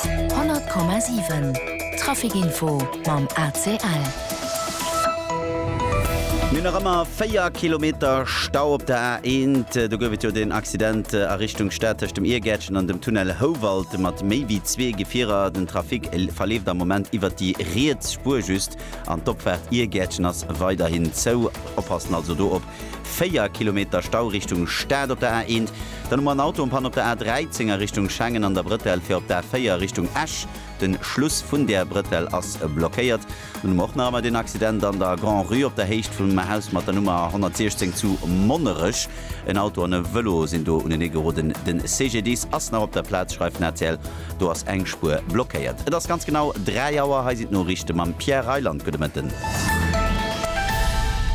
100,7 Trafic Info mam ACL. Mir hunn nach ëmmer 4 Kilometer Stau op der A1. Do gouf et jo deen Accident a Richtung Stad tëscht dem Iergäertchen an dem Tunnel Houwald mat méi wéi zwee Gefierer. Den Trafic verleeft am Moment iwwert déi riets Spuer just an d'Opfaart Iergäertchen ass weiderhin zou. Oppassen also do op 4 Kilometer Stau Richtung Stad op der A1, dann hu mer en Auto en Panne op der A13 a Richtung Schengen an der Brëtell fir op d'A4 Richtung Esch. De Schluss vun där Brëtell ass blockéiert. Dann hu mer och nach ëmmer deen Accident an der Grand-Rue op der Héicht vum Haus mat der Nummer 116 zu Monnerech. En Auto an e Vëlo sinn do uneneegeroden. De CGDIS ass nach op der Plaz, schreift den rtl. Do ass eng Spuer blockéiert. Et ass ganz genau 3 Auer. Hei sinn d'Noriichte mam Pierre Reyland. Gudde Mëtten.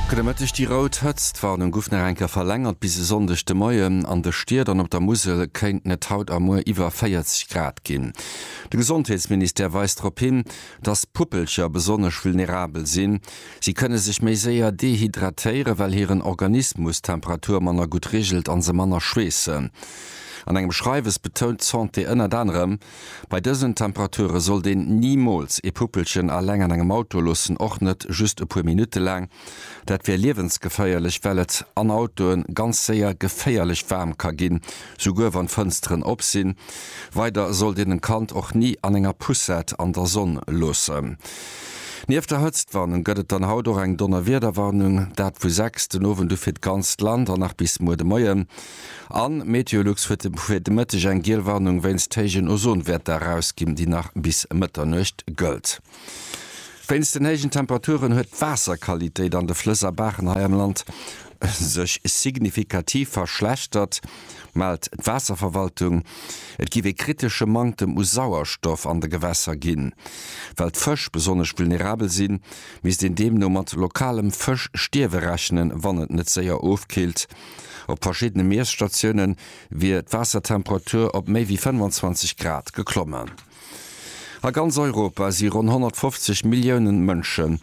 Gudde Mëtteg. Déi rout Hëtztwarnung guff nach eng Kéier verlängert bis e Sonndeg de Moien. An de Stied an op der Musel kéinten et haut a muer iwwer 40 Grad ginn. De Gesondheetsministère weist drop hin, dass Puppelcher besonnesch vulnerabel sinn. Si kënne sech méi séier dehydratéieren, well hiren Organismus d'Temperatur manner gutt regelt a se manner schweessen. An engem Schreiwes betount d'Santé ënnert anerem, Bei dësen Temperature sollt een nimools ee Puppelchen aleng an engem Auto loossen, och net just e puer Minutte laang. Dat wär liewensgeféierlech, well et an Autoe ganz séier geféierlech waarm ka ginn, souguer wann d'Fënsteren op sinn. Weider sollt een en Kand och ni an enger Poussette an der Sonn loossen. Nieft der Hëtztwarnung gëtt et dann haut och eng Donnerwiederwarnung, dat vu 6 den Owend u fir d'ganzt Land an nach bis muer de Moien. An Meteolux huet fir de Mëtteg eng giel Warnung wéinst héijen Ozonwäerter erausginn, déi nach bis Mëtternuecht gëllt. Wéinst den héijen Temperaturen huet d'Waasserqualitéit an de Flëss a Baachen hei am Land sech signifikativ verschlechtert, mellt d'Waasserverwaltung. Et géif ee kritesche Manktem u Sauerstoff an de Gewässer ginn. Well d'Fësch besonnesch vulnerabel sinn, misst een deemno mat lokalem Fëschstierwe rechnen, wann et net séier ofkillt. Op verschiddene Miesstatioune wier d'Waassertemperatur op méi wéi 25 Grad geklommen. A ganz Europa si ronn 150 Millioune Mënsche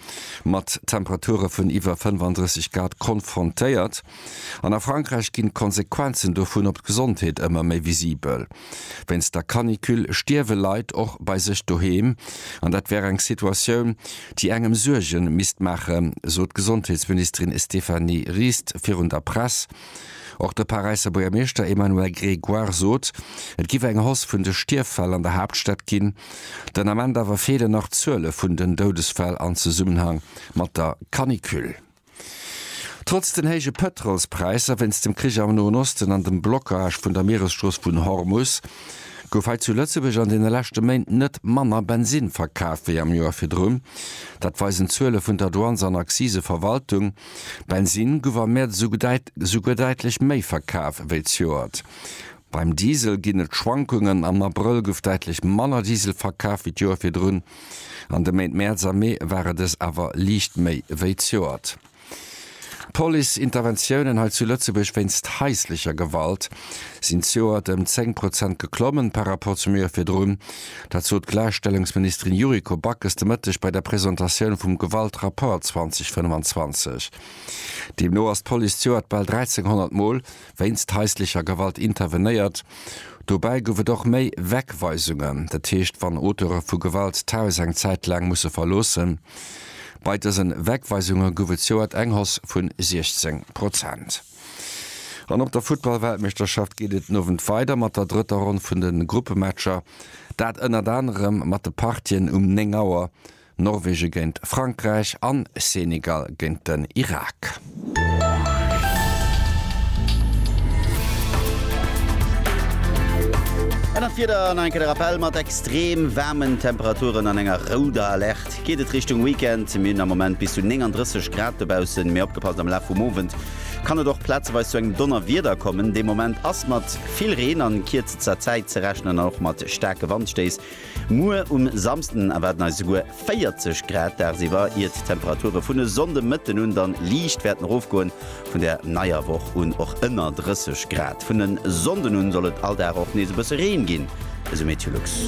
mat Temperature vun iwwer 35 Grad konfrontéiert. An a Frankräich ginn d'Konsequenzen dovun op d'Gesondheet ëmmer méi visibel. Wéinst der Canicule stierwe Leit och bei sech doheem. An dat wär eng Situatioun, déi engem Suerge misst maachen, sot d'Gesondheetsministerin Stéphanie Rist virun der Press. Och de Paräisser Buergermeeschter Emmanuel Grégoire sot, et géif eng Hausse vun de Stierffäll an der Haaptstad ginn. Den Ament awer feelen nach d'Zuele vun den Doudesfäll an Zesummenhang mat der Canicule. Trotz den héije Pëtrolspräisser wéinst dem Krich am Noen Osten an dem Blockage vun der Mieresstrooss vun Hormus gouf hei zu Lëtzebuerg an deene leschte Méint net manner Bensinn verkaf wéi am Joer virdrun. Dat weisen d'Zuele vun der Douanes an Akziseverwaltung. Bensinn gouf am Mäerz esouguer däitlech méi verkaf wéi d'Joert Beim Diesel ginn et Schwankungen, am Abrëll gouf däitlech manner Diesel verkaf wéi d'Joer virdrun, an de Méint Mäerz a Mee ware dës awer liicht méi wéi d'Joert. D'Police-Interventiounen hei zu Lëtzebuerg wéinst haislecher Gewalt sinn d'Joert ëm 10 Prozent geklommen par Rapport zum Joer virdrun. Dat sot d'Gläichstellungsministerin Yuriko Backes de Mëtteg bei der Presentatioun vum Gewaltrapport 2025. Deemno ass d'Police d'Joert bal 1.300 Mol wéinst haislecher Gewalt intervenéiert. Dobäi gouf et och méi Wegweisungen, dat heescht wann Auteure vu Gewalt d'Haus eng Zäit laang musse verloossen. Bei dësen Wegweisunge gouf et zouert eng Hausse vu 16 Prozent. An op der Futtball-Weltmeeschterschaft geet et den Owend weider mat der drëtter Ronn vun de Gruppematcher, dat ënnert anerem mat de Partien um 9 Auer Norwegen géint Frankräich an Senegal géint den Irak. Ännert Wieder an eng Kéier de Rappell, Mat extrem waarmen Temperaturen an enger rouder Alerte geet et Richtung Weekend. Mir hunn am Moment bis zu 39 Grad dobaussen, mee opgepasst, am Laf vum Owend kann et och plazeweis zu engem Donnerwieder kommen. De Moment ass mat vill Reen a kierzter Zäit ze rechnen an och mat staarke Wandstéiss. Muer um Samsden erwaarden eis esouguer 40 Grad dagsiwwer, ier d'Temperature vun e Sonndemëtten un dann liicht wäerten erofgoen. Vun der neier Woch un och ënner 30 Grad. Vun e Sonnden un soll et all Dag och nees e bësse Reen ginn, esou Meteolux.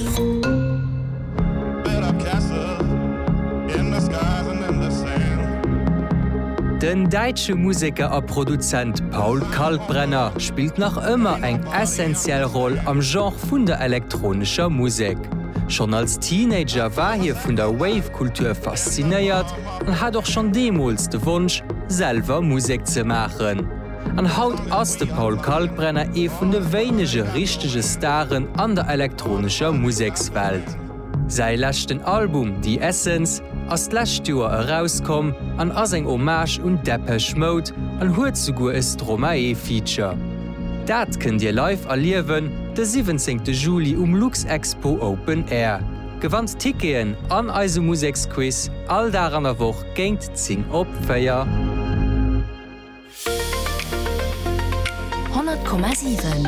Den däitsche Museker a Produzent Paul Kalkbrenner spillt nach ëmmer eng essentiell Roll am Genre vun der elektronescher Musek. Schonn als Teenager war hie vun der Wave-Kultur faszinéiert an hat och schonn deemools de Wonsch, selwer Musek ze maachen. An haut ass de Paul Kalkbrenner ee vun de wéinege richtege Staren an der elektronescher Musekswelt. Säi leschten Album The Essence ass d'lescht Joer erauskomm an ass eng Hommage un Depeche Mode an huet souguer e Stromae-Feature. Dat kënnt Dir live erliewen de 17 Juli um Luxexpo Open Air. Gewannt Ticketen an eise Museksquiz all Dag an der Woch géint 10 op 4. 100,7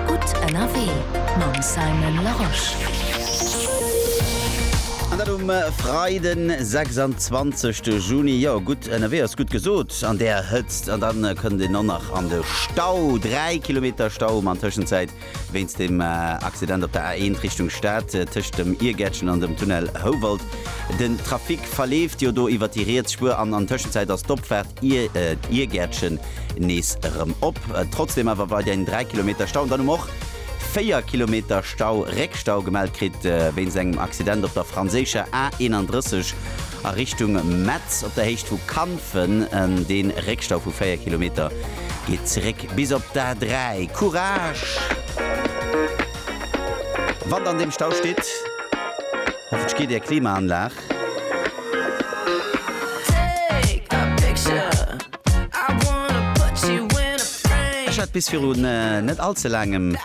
Gutt ënnerwee mam Simon Larosche. An dat um Freiden, 26 de Juni. Jo, gutt ënnerwee ass gutt gesot an där Hëtzt. An da kënnt een och nach an de Stau. Dräi Kilometer Stau, ma an Tëschenzäit Wéinst dem Accident op der A1 Richtung Stad tëscht dem Iergäertchen an dem Tunnel Houwald. Den Trafic verleeft jo do iwwer déi riets Spuer an an Tëschenzäit ass d'Opfaart Iergäertchen nees erëm op. Trotzdem awer weiderhin 3 Kilometer Stau. An dann hu mer och 4 Kilometer Stau, Réckstau gemellt kritt wéinst engem Accident op der franséischer A31 a Richtung Metz op der Héicht vu Kanfen. Dee Réckstau vu 4 Kilometer geet zeréck. Bis op d'A 3. Courage! Wann der an deem Stau stitt, hoffe ech geet är Klimaanlag. Ech hat bis viru net all ze laangem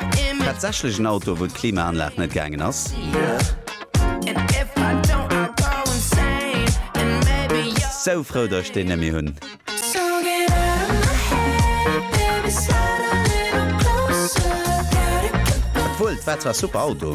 tatsächlech en Auto wou d'Klimaanlag net gaangen ass. Sou frou dass ech deen net méi hunn. Wuel, dat war super Auto!